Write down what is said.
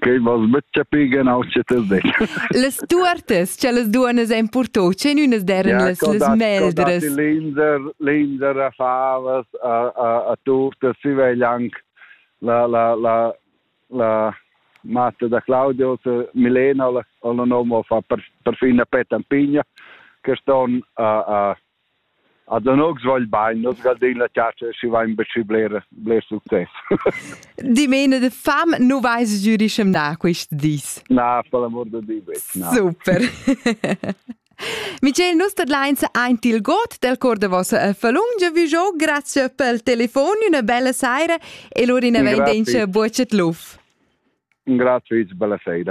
Quei vas buc chapir genau sche ti detg. Las tuortas cha las duonnas ein purtau, tschenünas deren ja, las, las meldras. Linser, linser a favas, a, a, a turtas, si vegl anc la, la, la, la matta da Claudio, Milena, la, la nome fa per, perfin a pet ampigna, che ston a, a A Danox vagl bain, nus gardein la chatscha schi vain be schi bler, bler success. Dimena de fam nu vais giurischemnà quist dis. Na, per l'amor de Dio, betg, na. Super. Michel, nus tadlains aint il got del cor de vossa falungia vi jo, grazie pel telefon, una bella saira e lura in avantenza bucet luf. Grazie, bella sera.